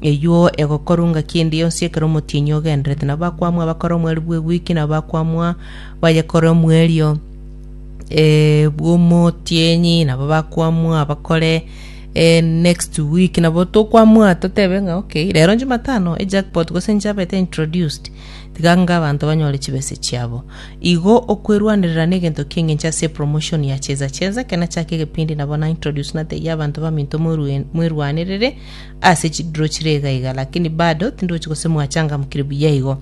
Eyio egokorwa ngaki ende yonsi ekero omotienyi ogendererete, na abakwamwa abakore omweri bw'egwiki, na abakwamwa bayekore omwerio eh, bw'omotienyi, nabo bakwamwa abakore eh, next week, nabo tokwamwa totebe ng'a okay, rero Jumatano ejackpot gose nchabete introduced, tiga nga abanto banyore chibese chiabo. Igo okwerwanerera negento ki'engencho ase epromotion ya Cheza Cheza, ekero nachaka egepindi nabo na introduce natebia abanto baminto mwerwe- mwerwanerere ase chiduro chire iga iga, lakini bado tindochi gose mwachangamkire buya igo.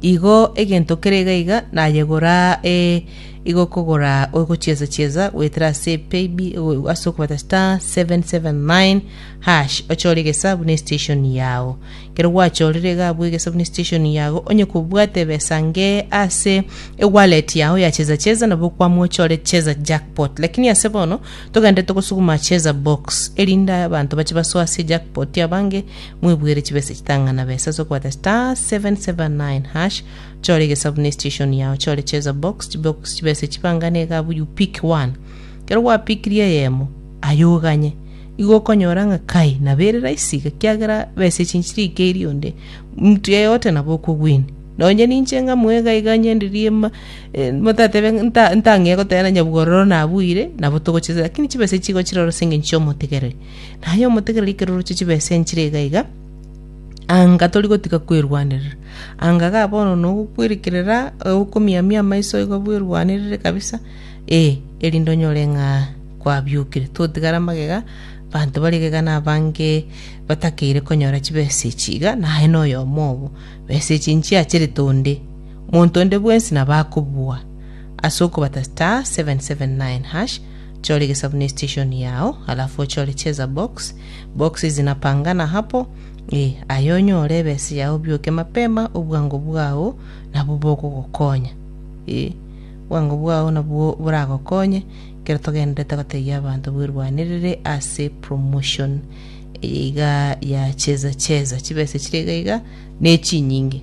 Igo egento kere iga iga nayegora e, igo kogora ogochiesa chiesa goetera ase payb o- ase okobata star 779 hash ochore egesa buna estation yao kero gwachorire iga abwo egesa buna estation yago onye kobwate ebesa nge ase ewallet yao ya cheza cheza nabo kwamwa ochore cheza jackpot lakini ase bono Togende togosuguma cheza box erinde abanto bache basoe ase jackpot abange mwebuere chibesa chitang'ana besa ase okobata star seven seven nine hash chore egesabu ne station yao chore cheza box chibox chibesa chibangane egabu you pick one kero gwapikirie eyemo aye oganye igo okonyora ng'a kai nabo ere rahisi iga kiagera besa echi nchirikei rionde mtu yeyote nabo okogwini nonye ninche ng'amwe iga iga nyenderie ma Motatebe nta- ntang'ee goteena nyabwo ororo nabuire, nabo togochesa, lakini chibesa echi chigochira ororo ase engencho chi'omotegereri. Na aye omotegereri ekero oroche chibesa enchire iga iga, anga tori gotiga kwerwanerera. Anga iga bono nogokwerekerera, okomiamia amaiso igo bwerwanerere kabisa, eh, erinde onyore ng'a kwabiokire. Totigara magega, abanto bare iga iga na abange batakeire konyora chibesa echi iga, naye na oyomo obo. Besa echi nchiacherete onde. Monto onde bwensi nabo akobua ase okobata star 779 hash, chora egesabu ne station yao, alafu ochore cheza box, boxes zinapangana hapo, ee, aye onyore ebesa yao obioke mapema, obwango bwao nabwo bogogokonya. Ee, obwango bwao nabwo boragokonye ekero togenderete gotebia abanto bwerwanerere ase promotion eye iga ya cheza cheza. Chibesa chire iga iga nechinyinge.